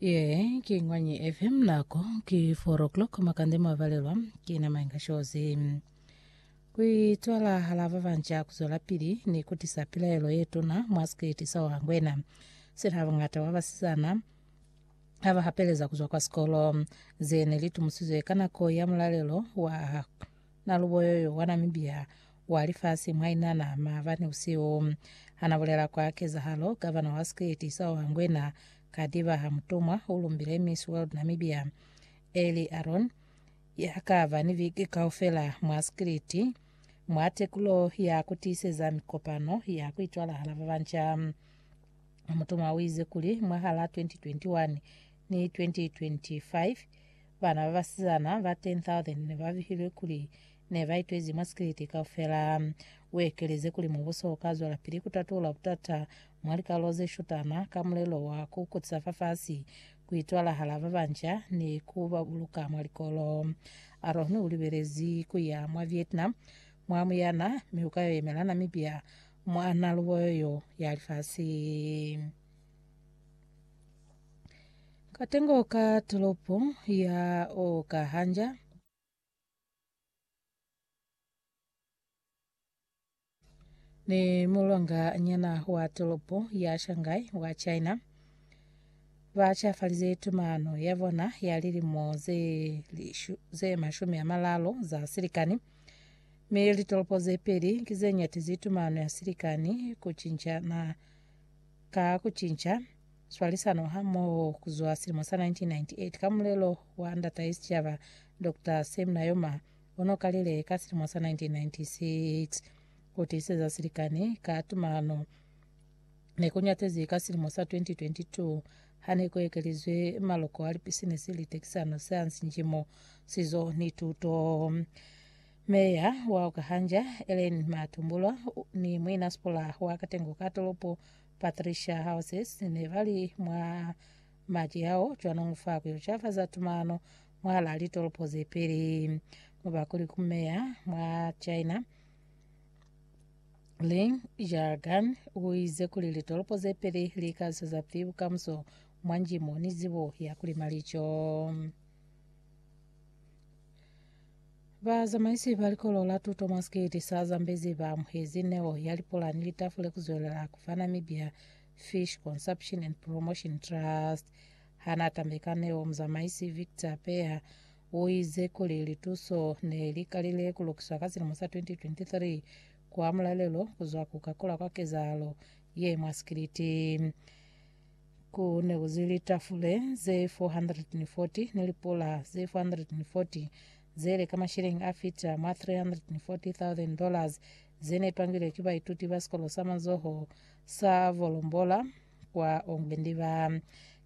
Ye ki Ngwanyi FM nako ki 4 o'clock makande mwavalelwa ki na Mainga Shozi. Kuitwala hala ba banja kuzwela pili ni kutisa pilaelo ye tuna mwa sikiti sa Wangwena. Sina bangata ba basizana ha ba hapeleza kuzwa kwa sikolo. Ze ne li tumusizwe ka nako ya mulalelo wa Naluboyoyo wa Namibia wa lifasi mwainana maabani usiu. Hana bulela kwa kezahalo, gavana wa State Isawa Ngwena Kadiba Hamutumwa ulumbile Miss World Namibia Ellie Aron yakaba ni viki kaufela mwa State mwa tekulo ya kutiiseza mikopano ya kuitwalahala babanca. Hamutumwa uize kuli mwahala 2021 ni 2025 bana babasizana ba 10,000 nebabihilwe kuli ne ba itwezi mwa sikiliti kaufela. U ekelezi kuli mubuso u ka zwelapili ku tatula butata mwa likalolo ze shutana ka mulelo wa ku kutisa fafasi, ku itwalahala ba banca ni ku ba buluka mwa likolo. Aroni u libelezi ku ya mwa Vietnam mwa muyana mi u ka yo yemela Namibia mwa nalubo yo ya lifasi. Katengo ka tolopo ya Okahanja. Ni mulonga nyana wa tolopo ya Shanghai wa China ba chafalize tumano ya bona ya lilimo ze, lishu, ze mashumi a malalo za silikani mi litolopo ze peli ki ze nyatizi tumano ya silikani ku cinca na ka ku cinca swalisano hamoho kuzwa silimo sa 1998 ka mulelo wa Ndatahe Sicaba, Doctor Sam Nujoma, ono kalile ka silimo sa 1996. Ku tiiseza silikani ka tumano ne ku nyatezi ka silimo sa 2022 hane ku ekelizwe maloko a lipisinisi, litekisano, sayansi, njimo, sizo ni tuto. Meya wa Okahanja, Ellen Matumbulwa, ni muinasikola wa katengo ka tolopo Patricia Houses ne ba li mwa maci ao cwanong fa ku yo cafaza tumano mwahalaa litolopo ze peli, mubakuli ku meya mwa China Ling Zhaogan u ize kuli litolopo ze peli li ka zweza pili bukamuso mwa njimo ni zibo ya ku lima lico. Bazamaisi ba likolo la tuto mwa sikiti sa Zambezi ba amuhezi neo ya lipulani litafule ku zwelela ku fa Namibia Fish Consumption and Promotion Trust. Ha n'a tambe ka neo, muzamaisi Victor Peya u ize kuli lituso ne li kalile ku lukiswa ka silimo sa 2023 kwa mulalelo ku zwa ku kakulwa kwa kezahalo ye mwa sikiliti. Ku ne ku zi litafule ze 440 ni lipula ze 440 ze le ka mashilingi a fita mwa 340,000 dollars ze ne twangilwe ki baituti ba sikolo sa mazoho sa Volombola kwa Ongwendiva.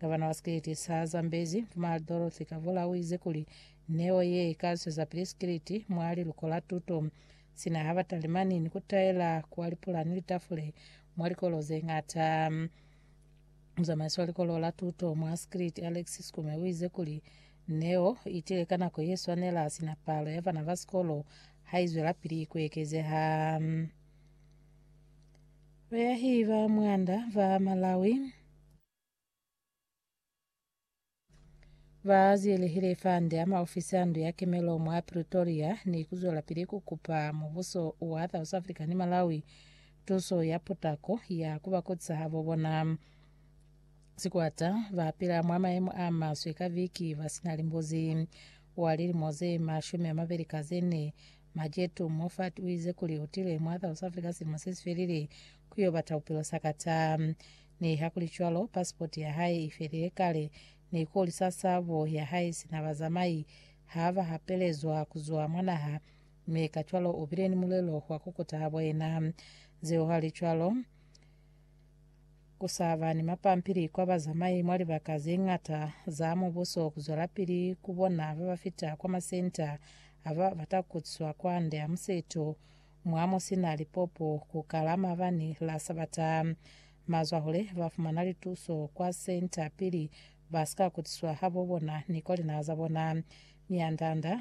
Gavana wa sikiliti sa Zambezi, Mfumahali Dorothy Kavula, u ize kuli neo ye i ka swezapili sikiliti mwa liluko la tuto sina ha ba talimani ni ku taela kwa lipula ni litafule mwa likolo ze ñata. Muzamaisi wa likolo la tuto mwa Sekriti, Alex Skume, uize kuli, Neo itile ka nako yeswanela sina palo ya bana ba sikolo haizwelapili kuekezeha. Bayahi ba mwanda ba Malawi. Ba ziyelehile fande ama ofisi a ndu ya kemelo mwa Pretoria ni kuzwelapili kukupa mubuso wa South Africa ni Malawi tuso ya potako ya kuba kotsi habo bona. Sikwata bapila mwa maemo a maswe ka viki basina limbuzi. Wa lilimo ze mashumi amabeli ka zene, Majetu Moffat uize kuli utile mwa South Africa silimo sesifelile kuyo bata bupilo sakata. Nihakulicwalo, pasipoti ya hae i felile kale, ni kuli sa sabo ya hae sina bazamai ha ba hapelezwa ku zwa mwa naha, mi kacwalo u bile ni mulelo wa ku kuta habo yena. Zeuhalicwalo, ku sa ba ni mapampili kwa bazamai mwa libaka ze ñata za mubuso ku zwelapili ku bona ba ba fita kwa masenta a ba bata ku kutiswa kwande ha museto Mwa mo si na lipopo ku kala mabani la Sabata, mazwahule ba fumana lituso kwa senta pili ba si ka kutiswa habo bona ni kwa linaha za bona. Mianda-nda